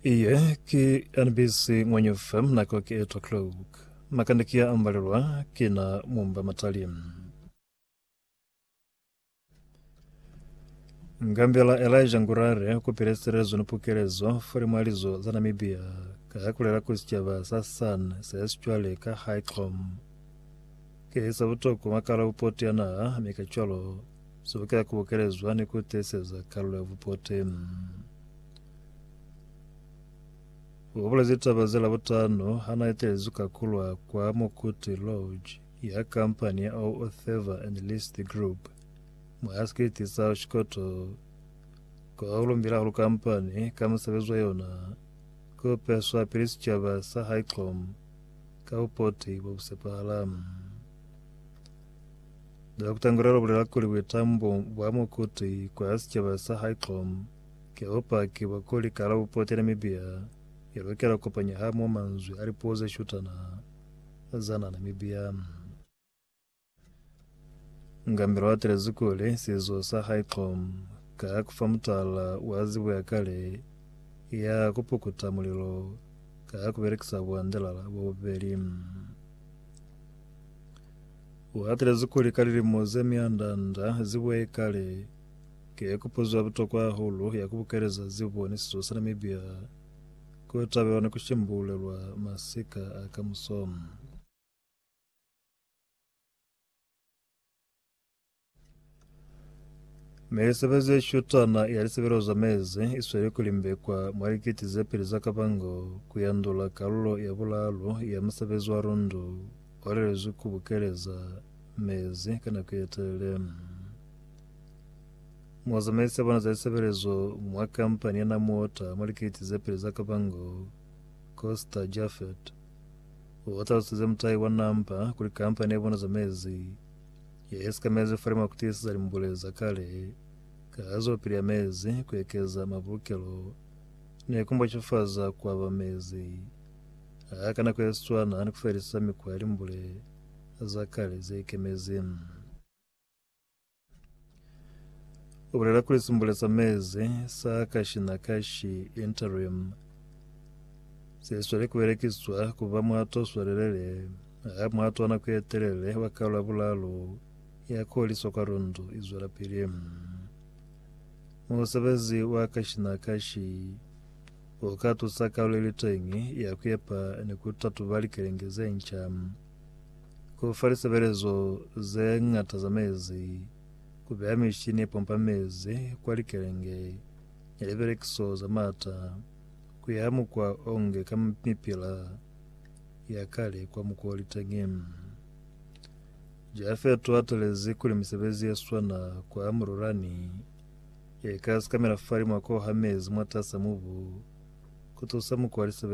Iye ki NBC Ngwenyu FM nako ki 8 o'clock. Makande ki ya ambalelwa ki na mumba matali. Ngambela Elijah Ngurare ukupile sirezo ni pukelezo fuli mwa lizo za Namibia ka ha kulela kuli sicaba sa San se sicwale ka High Clom. Ke sa butoko makala upoti ya naha mi ka cwalo Sebokela ku bokele zwani ku tiiseza kalulo ya bupoti? U bulezi taba ze Labutano ha na etelezi ka kulwa kwa Mokuti Lodge ya kampani ya O Otheva and List Group mwa sikiti sa Oshikoto ko ha u lumbile hahulu kampani ka musebezi wa yona ku peswa pili sicaba sa Highclom ka bupoti bo bu sepahala. Dr. Kutangura ubulela kuli buitambo bwa Mokuti kwa sicaba sa Highlom ki bupaki bwa kuli kalabupuo ki Namibia i lukela ku kopanywa hamoho manzwi a lipuo ze shutana za naha Namibia. Ngambela u atelezi kuli sizo sa Highlom ka ku fa mutala wa zibo ya kale ya ku pukuta mulilo ka ku belekisa buandelala bo bubeli. U hatelezi kuli ka lilimo ze mianda-nda zibo ye kale, ki kupuzo ya butokwa hahulu ya ku bukeleza zibo ni sizo sa Namibia ku tabelwa ni ku shimbululelwa masika a kamuso. Misebezi ye shutana ya lisebelo za mezi i sweli ku limbekwa mwa likiti ze pili za kabango ku yandula kalulo ya bulaalu ya musebezi wa rundu o lelezwi ku bukeleza mezi ka nako ye telele. Muzamaisi ya bona za lisebelezo mwa kampani ya Namuwater mwa likiti ze pili za kabango, Costa Jaffet, o talusize mutahi wa Nampa kuli kampani ya bona za mezi Yesu ka mezi fa limo kutisiza limbule za kale ka zopili ya mezi kuekeza mabulukelo ne kumbocefaza kwaba mezi. A ka nako yeswana ni kufelisa mikwa ya limbule za kale zeikemezi. U bulela kuli simbule sa mezi sa kashi na kashi, interim, se sweli ku belekiswa ku ba muhato o swelelele ha muhato wa nako ye telele wa Karolo ya Bulalo ya Koliso kwa Lundu i zwelapili. Musebezi wa kashi na kashi u ka tusa karolo i li teñi ya ku epa ni ku tatuba likelenge ze nca. ku fa lisebelezo ze ñata za mezi, ku beya mishini ye pompa mezi kwa likelenge ni libelekiso za maata ku ya mukwa o nge ka mipila ya kale kwa mukwa wa liteñi. Jafeta u atelezi kuli misebezi ye swana kwa Mururani ye ka sikamela fa limwa ko ha mezi mwatas'a mubu ku tusa mukwa wa lisebelezo.